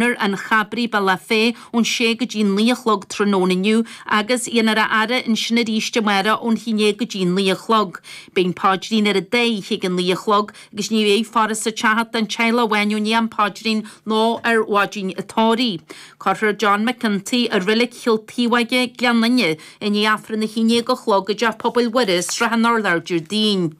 ar an Chabraigh, Bealach Féich ón sé go dtí naoi a chlog tráthnóna inniu agus déanfar a fhaire ansin aríst amáireach ón haon déag go dtí naoi a chlog. Beidh an paidrín ar an dá oíche ag an naoi a chlog agus ní bheidh faire sa teach ach don teaghlach amháin i ndiaidh an phaidrín nó ar mhaidin an tórraimh. Cuirfear John McGinty i Reilig Chill Taobhóige, Gleann Fhinne, i ndiaidh Aifreann a haon déag a chlog i dTeach Pobail Mhuire, Srath an Urláir, Déardaoin.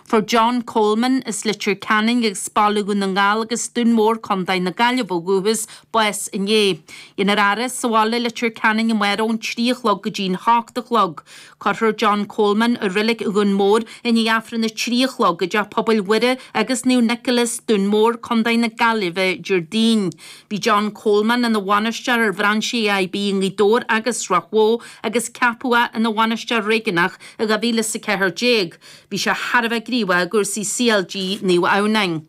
Fuair John Coleman, as Leitir Ceanainn agus Baile Dhún na nGall agus Dún Mór Contae na Gaillimhe ó dhúchas, bás inné. Déanfar a fhaire sa bhaile i Leitir Ceanainn amárach ón trí a chlog go dtí an hocht a chlog. Cuirfear John Coleman i reilig Dhún Mór i ndiaidh Aifreann a trí a chlog i dTeach Pobail Mhuire agus Naomh Nicholas, Dún Mór, Contae na Gaillimhe, Déardaoin. Bhí John Coleman ina bhainisteoir ar bhrainsí AIB i nGaoth Dobhair agus Ráth Bhoth agus ceapadh é ina bhainisteoir réigiúnach I 2014 bhí sé thar a bheith gníomhach i gcúrsaí CLG Naomh Adhamhnáin.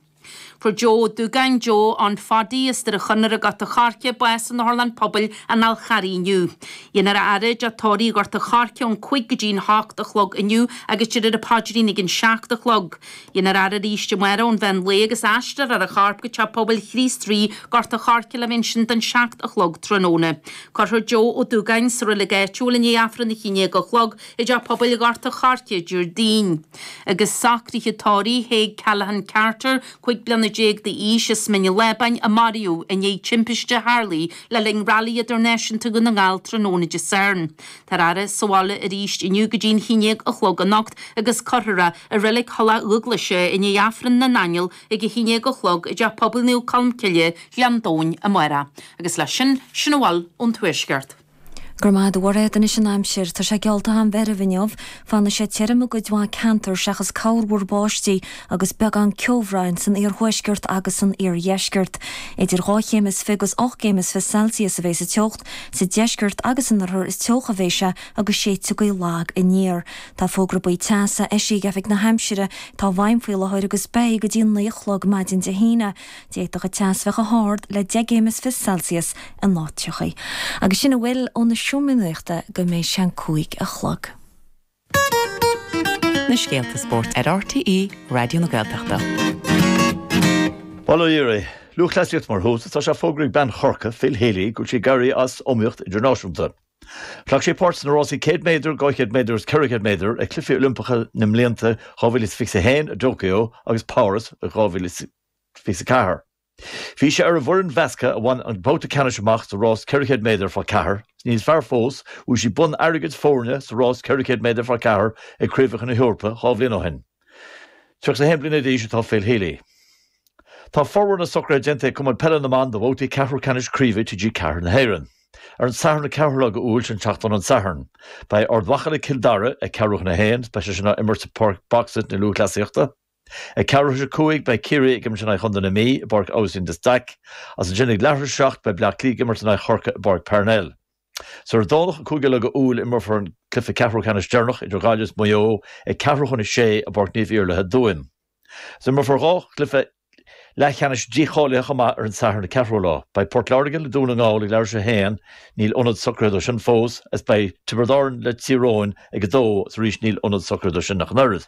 Fuair Joe Ó Dúgáin, Joe Ann Pháidí, as Doire Chonaire i nGort an Choirce, bás in Otharlann Pobail an Fhál Carraigh inniu. Déanfar a fhaire i dTeach Tórraimh Ghort an Choirce ón 5 go dtí an 8 a chlog inniu agus déarfar an paidrín ag an 7 a chlog. Déanfar a fhaire arís amárach ón mheán lae agus aistreofar a chorp go Teach Pobail Chríost Rí, Gort an Choirce le bheith ansin don seacht a chlog tráthnóna. Cuirfear Joe Ó Dúgáin sa reilig áitiúil i ndiaidh Aifreann a haon déag a chlog i dTeach Pobail Ghort an Choirce Déardaoin. Agus socruithe tórraimh Thaidhg Callaghan Carter, cúig bliana déag d'aois, as Mín an Lábáin a maraíodh i ndiaidh timpiste a tharla le linn Rally Idirnáisiúnta Dhún na nGall tráthnóna Dé Sathairn. Táthar á fhaire sa bhaile arís inniu go dtí'n haon déag a chlog anocht agus cuirfear i Reilig Thulach Dhúghlaise é i ndiaidh Aifreann na nAingeal ag a haon déag a chlog i dTeach Pobail Naomh Colmcille, Gleann Domhain, amárach. Agus leis sin, sin a bhfuil ón Tuaisceart. Go raibh maith agat, a Mhairéad. Anois an aimsir. Tá sé geallta an-mheirbh inniu. Fanfaidh sé tirim i gcuid mhaith ceantar seachas corrmhúr báistí agus beagán ceobhráin san iarthuaisceart agus san iardheisceart. Idir dhá chéim is fiche agus ocht gcéim is fiche Celsius a bheidh sa teocht. Sa deisceart agus in oirthear is teocha a bheidh sé agus séidfidh gaoth lag aniar. Tá fógra buí teasa eisithe ag Oifig na hAimsire atá i bhfeidhm faoi láthair agus beidh go dtí a naoi a chlog maidin Dé hAoine. D'fhéadfadh an teas bheith chomh hard le 10 gcéim is fiche Celsius in áiteachaí, agus sin a bhfuil ó na seomraí nuachta go mbeidh sé an cúig a chlog. na scéalta spóirt ar RTÉ Raidió na Gaeltachta. Bail ó Dhia oraibh, Lúthchleasaíocht mar thús, tá sé fógraithe ag bean Chorcaí Phil Healy go bhfuil sí ag éirí as iomaíocht idirnáisiúnta. Ghlac sí páirt sna rásaí 100 méadar, 200 méadar agus 400 méadar ag Cluichí Oilimpeacha na mblianta 2021 i dTóiceo agus Páras 2024. Bhí sí ar an bhfoireann mheasctha a bhain an babhta ceannais amach sa rás 400 méadar fá ceathair. Níos fearr fós, bhuaigh sí bonn airgid foirne sa rás 400 méadar fá ceathair ag Craobhacha na hEorpa dhá bhliain ó shin. 31 bliana d'aois atá Phil Healy. Tá formhór na socruithe déanta ag Cumann Peile na mBan do bhabhtaí ceathrú ceannais Craoibhe TG4 na hÉireann. Ar an Satharn an 4ú lá de Iúil, sin seachtain ón Satharn, beidh Ard Mhacha le Cill Dara ag ceathrú chun a haon, is beidh sé sin á imirt i bPáirc Box-It na Lúthchleasaíochta. Ag ceathrú tar éis a cúig, beidh Ciarraí ag imirt in aghaidh Chontae na Mí i bPáirc Aibhistín de Staic, agus ansin ag leathuair tar éis a seacht, beidh Bleá Cliath ag imirt in aghaidh Chorcaí i bPáirc Parnell. Ar an Domhnach an 5ú lá de Iúil, imreofar an cluiche ceathrú ceannais deireanach idir Gaillimh is Maigh Eo ag ceathrú chun a sé i bPáirc Naomh Iarlaithe i dTuaim. Is imreofar dhá chluiche leathcheannais dícháilithe chomh maith ar an Satharn an 4ú lá. Beidh Port Láirge le Dún na nGall ag leathuair tar éis a 1, níl ionad socraithe dó sin fós, agus beidh Tiobraid Árann le Tír Eoghain ag a 2, agus arís níl ionad socraithe dó sin ach an oiread.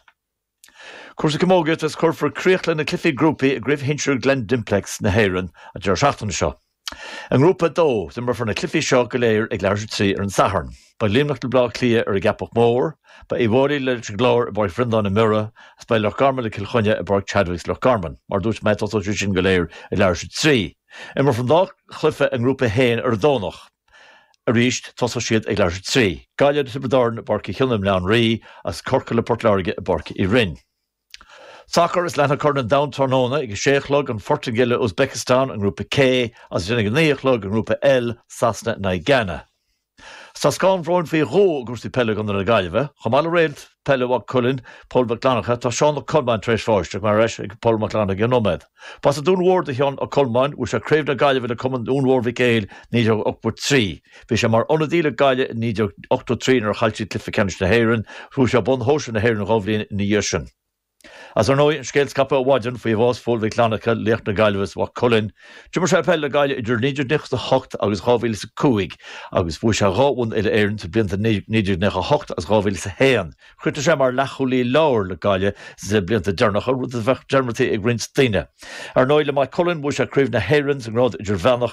Cúrsaí Camógaíochta Is cuirfear críoch le na cluichí grúpaí i gCraobh Shinsir Glen Dimplex na hÉireann an deireadh seachtaine seo. I nGrúpa 2, imreofar na cluichí seo go léir ag leathuair tar éis a trí ar an Satharn. Beidh Luimneach le Bleá Cliath ar an gCeapach Mhór, beidh Uíbh Fhailí leis an gClár i bPáirc Bhreandáin i mBiorra, agus beidh Loch Garman le Cill Chainnigh i bPáirc Chadwicks Loch Garman. Mar a dúirt mé, tosóidh siad sin go léir ag leathuair tar éis a trí. Imreofar an dá chluiche i nGrúpa 1 ar an Domhnach. Arís, tosóidh siad ag leathuair tar éis a trí. Gaillimh le Tiobraid Árann i bPáirc Uí Chionnaith i mBleá an Rí, agus Corcaigh le Port Láirge i bPáirc Uí Rinn. Sacar Is leanfaidh Corn an Domhain tráthnóna ag a sé a chlog, An Phortaingéil le Uzbekistan i nGrúpa K agus ansin ag a naoi a chlog i nGrúpa L, Sasana in aghaidh Ghána. Is tá scáth an bhróin faoi dhó i gcúrsaí peile i gContae na Gaillimhe, chomh maith le réalt peile Mhaigh Cuilinn, Pól Mac Fhlannchadha, tá Seán Ó Colmáin tar éis bháis chomh maith. Ar ais ag Pól Mac Fhlannchadha i gceann nóiméad. B'as an Dún Mór do Sheán Ó Colmáin. Bhuaigh sé Craobh na Gaillimhe le Cumann Dhún Mhór Mhic Éil 1983. Bhí sé mar ionadaí le Gaillimh i 1983 nuair a chaill siad cluiche ceannais na hÉireann. Bhuaigh sé bonn shóisir na hÉireann dhá bhliain ina dhiaidh sin. Is ar ndóigh an scéal scaipthe ó mhaidin faoi bhás Phóil Mhic Fhlannchadha, laoch na Gaillimhe is Mhaigh Cuilinn. D'imir sé peil le Gaillimh idir 1998 agus 2005 agus bhuaigh sé dhá bhonn Uile-Éireann sa blianta 1998 agus 2001. Chríochnaigh sé mar leathchúlaí láir le Gaillimh sna blianta deireanacha, rud a bheadh dearmadta ag roinnt daoine. Ar ndóigh, le Maigh Cuilinn bhuaigh sé Craobh na hÉireann sa nGrád Idirmheánach,